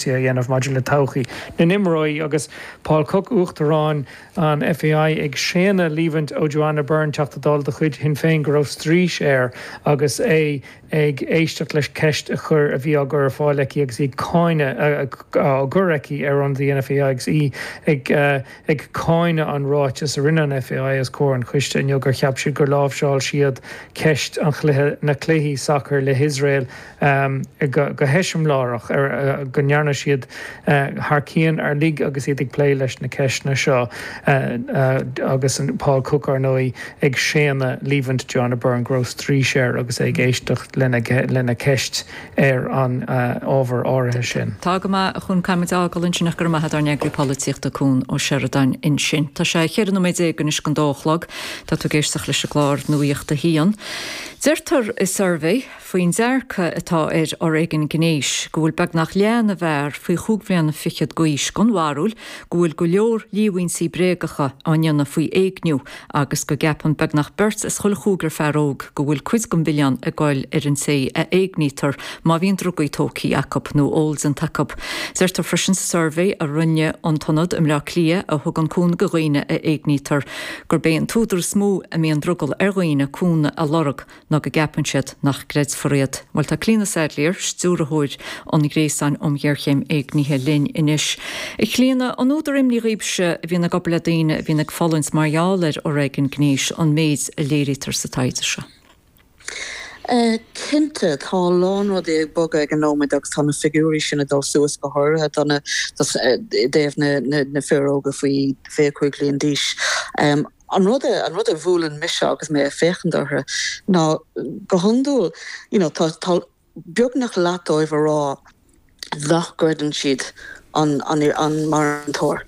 sé a dhéanamh maidir le todhchaí na n-imreoirí agus Paul Cooke, Uachtarán an FAI, ag séanadh líomhaint ó Joanna Byrne, Teachta Dála de chuid Shinn Féin, go raibh straois air agus é ag éisteacht leis ceist a chur a bhí á gcur ar fáil aici agus í ag cáineadh á gcur aici ar ionadaí an FAI agus í ag cáineadh an ráiteas a rinne an FAI os comhair an choiste inniu gur cheap siad gur láimhseáil siad ceist an chluiche na cluichí sacair le hIosrael go heiseamláireach, go ndearna siad thar cionn uilig agus iad ag plé leis na ceisteanna seo agus Paul Cook, ar ndóigh, ag séanadh líomhain Joanna Byrne go raibh straois air agus é ag éisteacht lena ceist ar an ábhar áirithe sin. Tá go maith, a Chuain, caithfimid a fhágáil ansin ach go raibh maith agat ár n-eagraí polaitíochta Cuan Ó Seireadáin ansin. Tá sé 14 nóiméad anois chun dó a chlog. Tá tú ag éisteacht leis an gclár Nuaíocht a hAon. Deirtear i suirbhé. faoin dearcadh atá ar fhoréigean gnéis, go bhfuil beagnach leath na bhfear faoi chúig bhliana fichead d'aois den bharúil go bhfuil go leor líomhaintí bréagacha á ndéanamh faoi éigniú agus go gceapann beagnach beirt as chuile chúigear fear óg go bhfuil cuid den mhilleán ag goil ar an té a éignítear má bhíonn drugaí tógtha acu nó ól déanta acu. Deirtear freisin sa suirbhé a rinne an tIonad i mBleá Cliath a thugann cúnamh do dhaoine a éignítear gurb é an t-údar is mó a mbíonn drogall ar dhaoine cúnamh a lorg ná go gceapann siad nach gcreidfear iad. Bhuel, tá Clíona Saidléar, Stiúrthóir an Ghréasáin um Ghéarchéim Éignithe linn anois. A Chlíona, an údar imní dhaoibhse a bhíonn ag obair le daoine a bhíonn ag fulaingt mar gheall ar fhoréigean gnéis an méid a léirítear sa taighde seo? Cinnte, tá a lán rudaí ag bogadh ag an nóiméad agus tá na figiúirí sin ag dul suas go háirithe i dtaobh na fir óga faoi 25 bhliain d'aois. An rud a an rud a bhuaileann mise agus mé ag féachaint orthu ná go hiondúil you know tá beagnach leath dóibh ag rá nach gcreideann siad an marthanóir.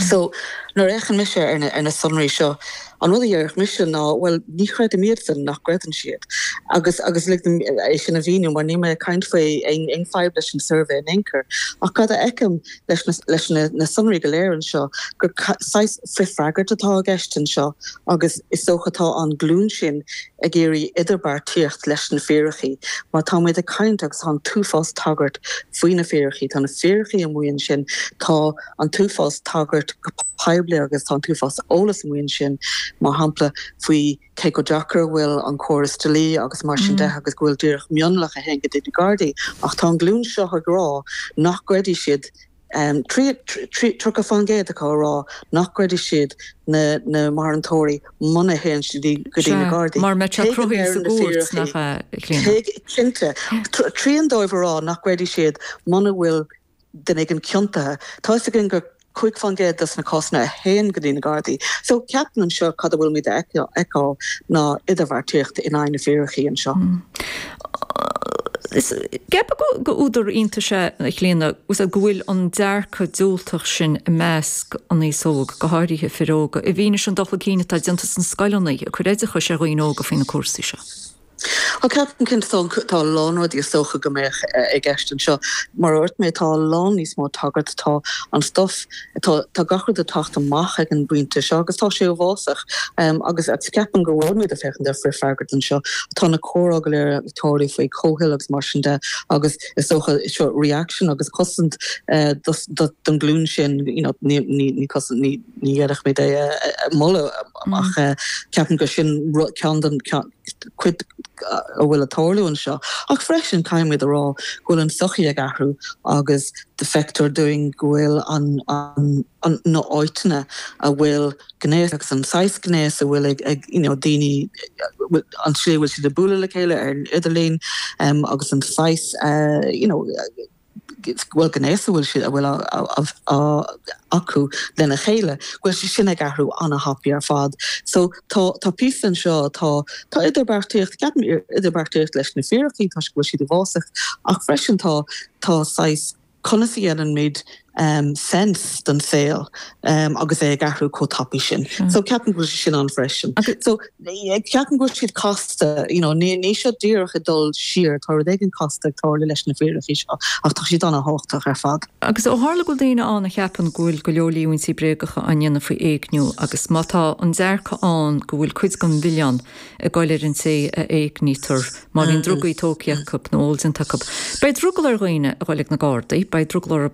So nuair a fhéachann mise ar na sonraí seo, an rud a dhéarfadh mise ná bhuel ní chreidim iadsan nach gcreideann siad agus agus lig dom é sin a mhíniú mar níl mé ag caint faoi aon fadhb leis an suirbhé in aon chor ach cad a fheicim leis na sonraí go léir anseo, gur saghas frithfhreagairt atá i gceist anseo agus is dócha tá an glún sin ag iarraidh idirbheartaíocht leis na fíricí. Mar táimid ag caint agus tá an t-uafás tagairt faoi na fíricí, tá na fíricí amuigh ansin, tá an t-uafás tagairt go poiblí agus tá an t-uafás eolas amuigh ansin, mar shampla, faoi. cé chomh deacair a bhfuil an córas dlí agus mar sin de agus go bhfuil díreach mionlach a théann go dtí na Gardaí, ach tá an ghlúin seo ag rá nach gcreidfidh siad, tríocha faoin gcéad acu ag rá nach gcreidfidh siad na na marthanóirí muna théann siad go dtí na Gardaí. Mar mbeadh sé cruthaithe sa gcúirt, nach ea, a Chlíona? Cinnte. Trian dóibh ag rá nach gcreidfidh siad muna bhfuil. duine éigin ciontaithe. Tá 'fhios againn gur cúig fán gcéad de na cásanna a théann go dtí na Gardaí. So, ceapaim anseo cad a bhfuilimid a fheiceáil ná idirbheartaíocht in aghaidh na bhfíricí anseo. Ceapaim gur údar iontais é, a Chlíona, go bhfuil an dearcadh diúltach sin i measc an aos óg, go háirithe fir óga, i bhfianaise an dul chun cinn atá déanta sna scoileanna ag cur oideachais ar dhaoine óga faoi na cúrsaí seo. Á, ceapaim go bhfuil an, tá a lán rudaí is dócha go mbeadh i gceist anseo. Mar a dúirt mé, tá a lán níos mó tagairt, tá an stuif, tá, tá gach rud ag teacht amach ag an bpointe seo agus tá sé uafásach. Agus ceapaim go bhfuilimid ag féachaint ar frithfhreagairt anseo. Tá na comhráite go léir ag tarlú faoi chomhthoil agus mar sin de agus is dócha, seo, reaction agus cosaint don ghlúin sin, you know, ní, ní, ní cosaint, ní, ní déarfaimid é a mholadh ach ceapaim gur sin rud, ceann den, ceann. cuid a bhfuil ag tarlú anseo, ach freisin caithfimid a rá go bhfuil an tsochaí ag athrú agus feictear dúinn go bhfuil an na áiteanna a bhfuil gnéas agus an saghas gnéas a bhfuil ag you know daoine an tslí a bhfuil siad ag bualadh le chéile ar an idirlíon agus an saghas you know bhfuil gnéas a bhfuil a bhfuil á acu lena chéile, go bhfuil sé sin ag athrú an-thapaidh ar fad. So tá tá píosa anseo atá tá idirbheartaíocht ceapaim idirbheartaíocht leis na fíricí toisc go bhfuil siad uafásach ach freisin tá tá saghas conas a dhéanaimid um, sense don saol um, agus é ag athrú chomh tapaidh sin. So ceapaim go bhfuil sé sin ann freisin. So Ceapaim go bhfuil siad casta. You know, níl siad díreach ag dul siar, tá rud éigin casta ag tarlú leis na fíricí seo, ach tá siad an-thábhachtach ar fad. Agus ó tharla go bhfuil daoine ann a cheapann go bhfuil go leor líomhaintí bréagacha á ndéanamh faoi éigniú, agus má tá an dearcadh ann go bhfuil cuid den mhilleán ag goil ar an té a éignítear má bhíonn drugaí tógtha acu nó ól déanta acu, beidh drogall ar dhaoine a ghoil ag na Gardaí, beidh drogall orthu.